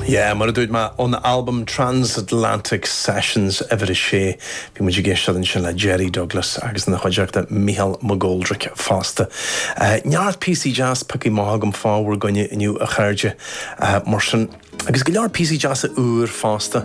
Yeah, mar a dúirt mé, ón albam Transatlantic Sessions, uimhir a sé, bhí muid ag éisteacht ansin le Jerry Douglas agus ina chuideachta Micheál McGoldrick fosta. Neart píosaí deas, pioctha amach agam fá bhur gcoinne inniu, a chairde, mar sin, agus go leor píosaí deasa úr fosta.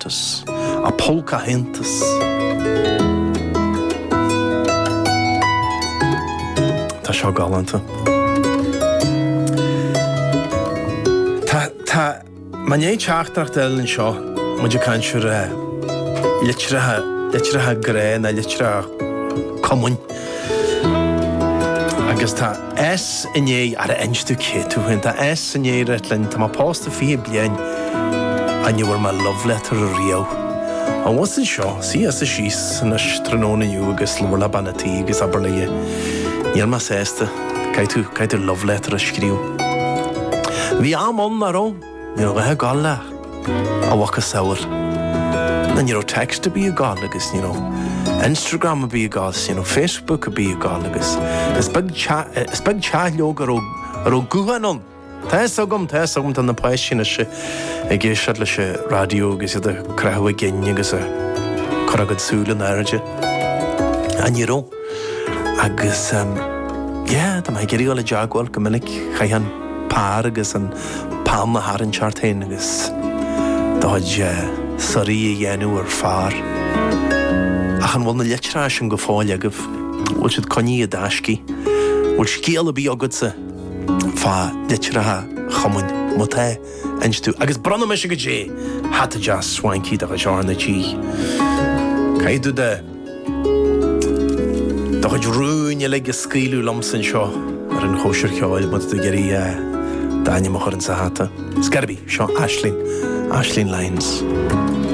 Airteas, an póca, aitheantas. Tá seo galánta. Tá, tá, muid i ndéidh teachtaireacht a fháil ann seo, muid ag caint ar litreacha, litreacha grá, na litreacha cumainn. Agus tá. S Ní, char inis tú cé tú féin? Tá S Ní ag rá linn, tá mé pósta fiche bliain. Ní bhfuair mé love letter ariamh. Ón bhus anseo. S, suigh síos anois tráthnóna inniu agus labhair le bean a tí agus abair léi Níl mé sásta, caithfidh tú, caithfidh tú love letter a scríobh. Bhí am ann, nach raibh? Ní raibh a dhath ag gabhail le, a mhacasamhail, na ní raibh text ar bith ag gabhail agus ní raibh Instagram ar bith ag gabhail 's ní raibh Facebook ar bith ag gabhail agus is beag teach, is beag teach leoga a raibh, a raibh gutháin ann. Tá 'fhios agam, tá 'fhios agam tá na páistí anois ag éisteacht leis an raidió agus iad a' croitheadh a gcinn agus a' cur a gcuid súil in airde. Á ní raibh. Agus, yeah, dá mbeifeá ag iarraidh dul i dteagmháil go minic chaithfeá an pár agus an peann a tharraingt ort fhéin agus do chuid suirí a dhéanamh ar phár. Ach an bhfuil na litreacha sin go fóill agaibh? Bhfuil siad coinnithe i dtaiscidh? Bhfuil scéal ar bith agatsa fá litreacha cumainn? Má tá, inis domh. Agus bronnfaidh mise ort hata deas swanky de chuid R na G. Caithfidh tú do. Do chuid rúin uilig a scaoileadh liomsa anseo ar an chóisir cheoil, má tá tú ag iarraidh d'ainm a chur insa hata. Cé bith, seo Aisling, Aisling Lyons.